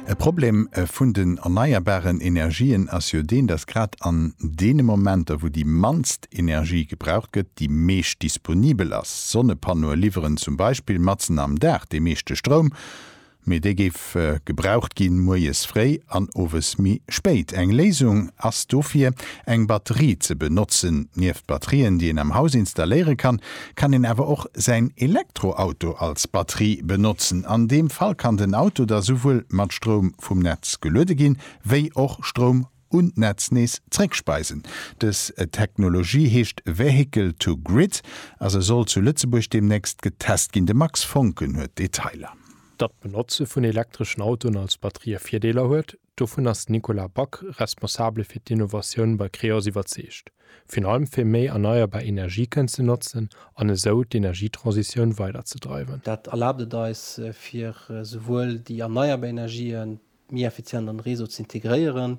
E Problem vun den erneierbaren Energien ass jo deen, dass grad an deene Momenter, wou déi mannst Energie gebraucht gëtt, déi meescht disponibel ass. Sonnepannoe liwweren zum Beispill matzen am Dag dee meeschte Stroum, mee dee géif gebraucht gi moies fréi an owes méi spéit. Eng Léisung ass dofir, eng Batterie ze benotzen. Nieft Batterien, déi een am Haus installéiere kann, kann een awer och säin Elektroauto als Batterie benotzen. An deem Fall kann den Auto da souwuel mat Stroum vum Netz geluede ginn, wéi och Stroum un d'Netz nees zréckspeisen. Dës Technologie heescht Vehicle to Grid a se soll zu Lëtzebuerg deemnächst getest ginn. De Max Voncken huet d'Detailer. Datt d'Benotze vun elektreschen Autoen als Batterië Virdeeler huet, Dovun ass den Nicolas Back, Responsabele fir d'Innovatioun bei Creos, iwwerzeegt. Virun allem fir méi erneierbar Energie kënnen ze notzen an esou d'Energietransitioun weider ze dreiwen. Dat erlaabt et eis, fir souwuel déi erneierbar Energien méi effizient an de Réseau ze integréieren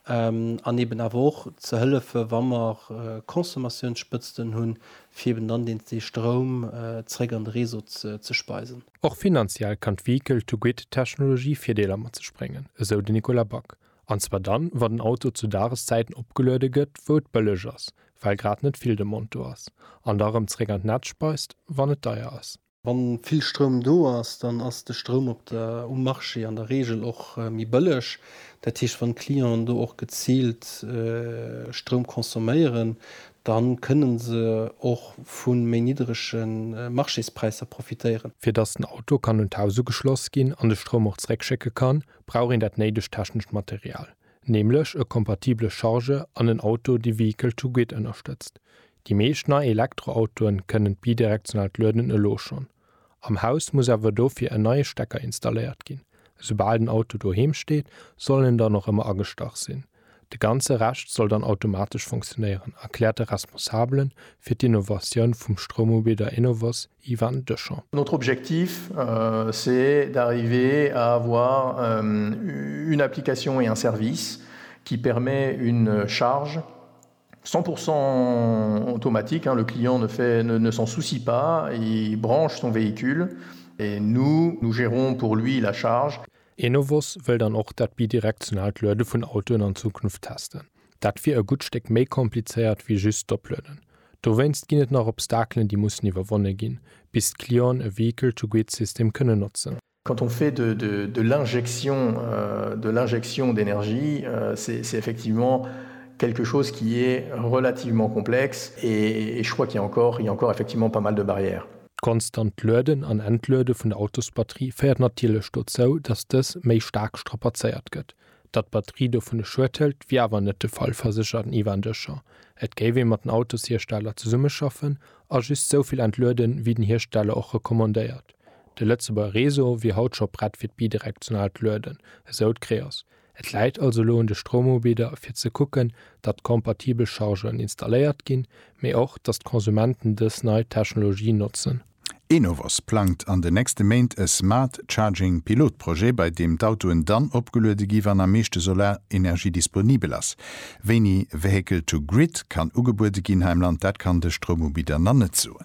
an eben awer och ze hëllefen, wa mer Consommatiounsspëtzten hunn, fir eben dann deels dee Stroum zeréck an de Réseau ze speisen. Och finanziell kann d'Vehicle-to-Grid-Technologie Virdeeler mat sech bréngen, esou de Nicolas Back, an zwar dann, wa den Auto zu Dageszäiten opgeluede gëtt, wou et bëlleg ass, well grad net vill Demande do ass, an da rëm zeréck an d'Netz speist, wann et deier ass. Wa vill Stroum do ass, dann ass de Stroum op der, um Marché an der Reegel och méi bëlleg. Dat heescht, wann d'Clienten do och geziilt Stroum consomméieren, Dann kënnen se och vun méi niddrege Marchéspräisser profitéieren. Fir dass den Auto kann un d'Haus ugeschloss ginn an de Stroum och zeréck schécke kann, brauch een dat néidegt technescht Material, nämlech e kompatibele Charge an en Auto dee Vehicle to Grid ënnerstëtzt. Déi meescht nei Elektroautoen kënnen d'bidirektionaalt Lueden elo schonn. Am Haus muss awer dofir en neie Stecker installéiert ginn. Esoubal den Auto doheem steet, soll en dann och ëmmer agestach sinn. De ganze Rescht soll dann automatesch funktionéieren, erkläert de Responsabele fir d'Innovatioun vum Stroumubidder Enovos, Ivan Deschamp. Notre objectif, c'est d'arriver à avoir une application et un service qui permet une charge 100 pourcent automatique, le client ne fait, ne s'en soucie pas, il branche son véhicule et nous, nous gérons pour lui la charge. Enovos wëll dann och dat bidirektionaalt Luede vun Autoen an Zukunft testen. Dat wier e gutt Stéck méi komplizéiert wéi just d'Oplueden. Dowéinst ginn et nach Obstakelen, déi mussen iwwerwonne ginn, bis d'Clienten e Vehicle-to-Grid-System kënnen notzen. Quand on fait de de l'injection de l'injection d'énergie, c'est c'est effectivement quelque chose qui est relativement complexe et et je crois qu'il y a encore il y a encore effectivement pas mal de barrières. D'konstant Lueden an Entluede vun der Autosbatterie féiert natierlech dozou, datt dës méi staark strapazéiert gëtt. Datt d'Batterie dovun e Schued hëlt, wier awer net de Fall, verséchert den Ivan Deschamp. Et géif ee mat den Autoshiersteller zesummeschaffen a just souvill entlueden, wéi den Hiersteller och recommandéiert. De Lëtzebuerger Réseau wier haut scho prett fir d'bidirektionaalt Lueden, esou d'Creos. Et läit also elo un de Stroumubidder fir ze kucken, datt kompatibel Chargeuren installéiert ginn, mee och, datt d'Konsumenten dës nei Technologie notzen. Enovos plangt an den nächste Méint e Smart Charging Pilotprojet, bei deem d'Autoen dann opgeluede gi wann am meeschte Solarenergie disponibel ass. Wéini Vehicle to Grid kann ugebuede ginn hei am Land, dat kann de Stroumubidder nach net soen.